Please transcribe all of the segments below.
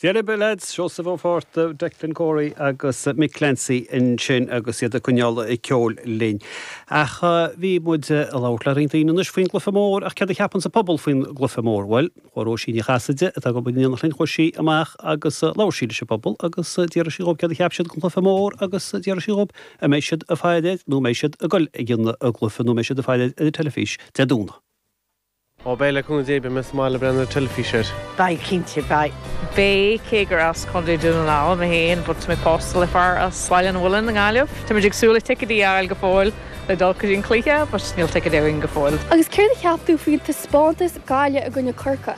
Dere be lads, Seosamh Ó Fátharta, Declan Corey agus Mick Clancy ansin agus iad ag coinneáil an cheoil linn. Ach bhí muid ag labhairt le roinnt daoine anois faoin gcluife mór ach céard a cheapann an pobal faoin gcluife mór? Bhuel, chuaigh Róisín Ní Chasaide, atá ag obair i ndialann linn, chuaigh sí amach agus labhair sí leis an bpobal agus d'iarr sí dhóibh céard a cheap siad den chluife mór agus d'iarr sí dhóibh an mbeidh siad ag faire air nó an mbeidh siad ag goil chuig an gcluife nó an mbeidh siad ag faire ar an teilifís Dé Domhnaigh. Ó beidh le cúnamh Dé beidh mé sa mbaile ag breathnú ar an teilifís air. Beidh cinnte beidh. Beidh cé gur as Contae Dhún na nGall mé féin but tá mé pósta le fear as Baile an Mhuilinn i nGaillimh. Táimid ag súil le ticéidí a fháil go fóill le dul go dtí an cluiche but níl ticéad againn go fóill. Agus céard a cheap tú faoin taispeántas Gaillimh i gcoinne Chorcaí?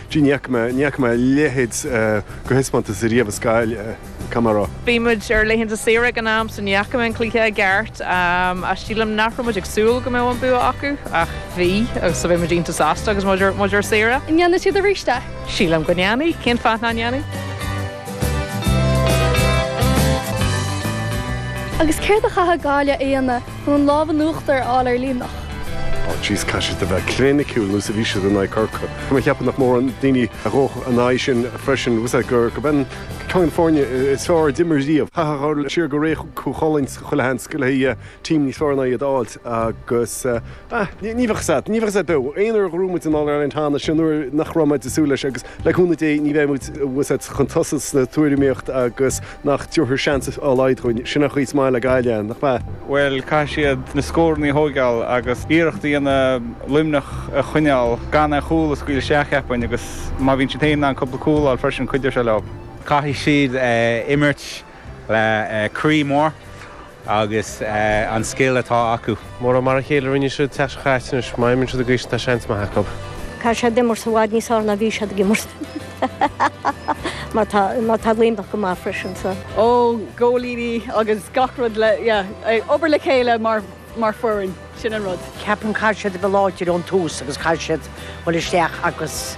Gee, ní fhaca mé, ní fhaca mé a leithéid de thaispeántas riamh i scil camán. Bhí muid ar laethanta saoire ag an am so ní fhaca mé an cluiche i gceart ach sílim nach raibh muid ag súil go mbeadh an bua acu ach bhí agus so bhí muid iontach sásta agus muid, muid ar saoire. An ndéanfaidh siad arís é? Sílim go ndéanfaidh, cén fáth nach ndéanfaidh? Agus céard a chaithfidh Gaillimh a dhéanamh? Chun an lámh in uachtar a fháil ar Luimneach. Á, jeez, caithfidh siad a bheith cliniciúil nós a bhí siad in aghaidh Corcaigh. Mar cheapfainn nach mórán daoine a ghabhfadh in aghaidh sin freisin, bhfuil a fhios agat, gurb é ceann de na foirne is fearr a d'imir riamh. Chaithfeá dhul siar go ré Chú Chulainn chuile sheans go bhfeicfeá team níos fearr ná iad a fháilt agus, ah, ní bheadh a fhios agat, ní bheadh a fhios agat beo. Aon uair a ghnóthaigh muid an All Ireland cheana, sin uair nach raibh muid ag súil leis agus, le cúnamh Dé, ní bheidh muid, bhfuil a fhios agat, chun tosaigh sa tuairimíocht agus, Nach dtiúrfar seans dá laghad dhúinn? Sin an chaoi is maith le Gaillimh, nach ea? Bhuel, caithfidh siad na scórannaí a thóigeáil agus iarracht a dhéanamh Luimneach a choinneáil gan aon chúl a scaoileadh isteach, cheapfainn, agus má bhíonn siad féin in ann cúpla cúl a fháil freisin, cuideoidh sé leo. Caithfidh siad imirt le croí mór. Agus an scil atá acu. Marab, mar a chéile a rinne siad le Corcaigh, anois má imríonn siad i gcaoi is tá seans maith acu. Tá siad ag imirt i bhfad níos fearr ná a bhí siad ag imirt. Mar tá Luimneach ag imirt go maith freisin sa. Ó, góilíní agus gach rud le, yeah, ag obair le chéile mar, mar foireann, sin an rud. Ceapaim caithfidh siad a bheith láidir ón tús agus caithfidh siad dhul isteach agus.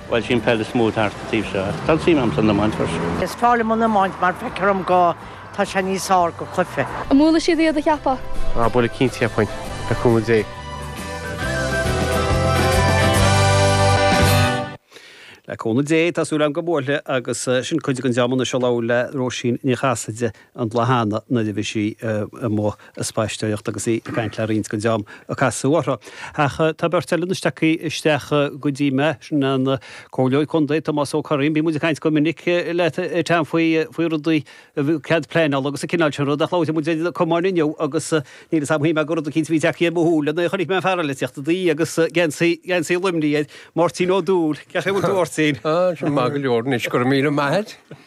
Bhuel is í an pheil is mó thart sa taobh seo, ach tá an suim agam san iomáint freisin. Is fearr liom an iomáint mar feicthear dom go tá sé níos fearr de chluiche. An mbuailfidh siad iad an gceapann tú? Á buailfidh cinnte cheapfainn, le cúnamh Dé. Le cúnamh Dé, tá súil agam go mbuailfidh agus sin cuid den dream ansin a labhair le Róisín Ní Chasaide na bláthanna nuair a bhí sí amuigh ag spaisteoireacht agus í ag caint le roinnt daoine a casadh uirthi. Ach tá beirt eile anois tagtha isteach go dtí mé, sin an Comhairleoir Contae, Tomás Ó Curraoin, bíonn muid ag caint go minic leat ar team faoi rudaí cead pleanála agus an cineál sin rud ach labhair muid ar na Cumainn inniu agus níl 'fhios a'm, shíl mé gur rud eicínt a bhí tagtha ar mo shúile nuair a chonaic mé an fear eile, teachta de dhíth agus geansaí, geansaí Luimnigh air, Máirtín Ó Dúill, cén chaoi a bhfuil tú Máirtín? Ó, tá mé maith go leor anois, go raibh míle maith a'd.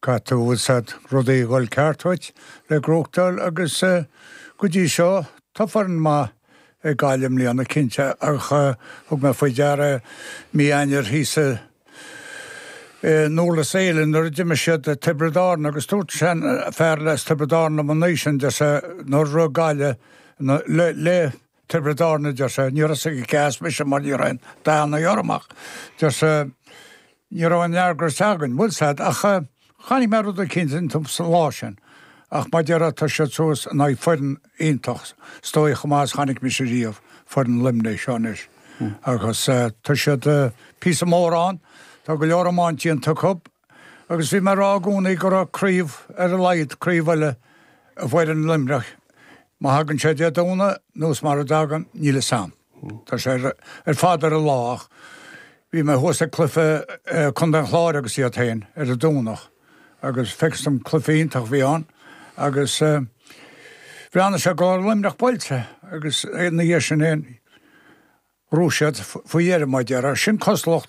Caithfidh tá a fhios a'd rudaí a dhul ceart dhuit le gnóthachtáil agus go dtí seo tá foireann maith ag Gaillimh i mbliana, cinnte, ach thug mé faoi deara mí Eanáir thíos i nDúrlas Éile nuair a d'imir siad Tiobraid Árann agus dúirt sean fear as Tiobraid Árann liom an oíche sin, deir sé, nuair a rinne Gaillimh le Tiobraid Árann, a deir sé. Ní raibh a fhios aige cé as mise, mar ní raibh aon dathanna orm ach, deir sé, ní raibh aon fhreagra againn. Bhuel sea ach chonaic mé rud eicínt iontu an lá sin. Ach maidir leis tá siad suas in aghaidh foireann iontach, is dóigh chomh maith is chonaic mise riamh, foireann Luimnigh seo anois. Agus tá siad píosa mór ann. Tá go leor iomáint déanta acu. Agus bhí mé ag rá i gcónaí go raibh craobh, ar a laghad, craobh eile i bhfoireann Luimneach. Má thagann sé Dé Domhnaigh nó mara dtagann, níl 'fhios a'm. Tá sé ar fad ar an lá ach bhí mé thuas ag cluiche Contae an Chláir agus iad féin ar an Domhnach agus facthas dom cluiche iontach a bhí ann agus bhreathnaigh sé go raibh Luimneach buailte agus ina dhiaidh sin fhéin, rug siad faoi dheireadh, maidir le sin cosúlacht.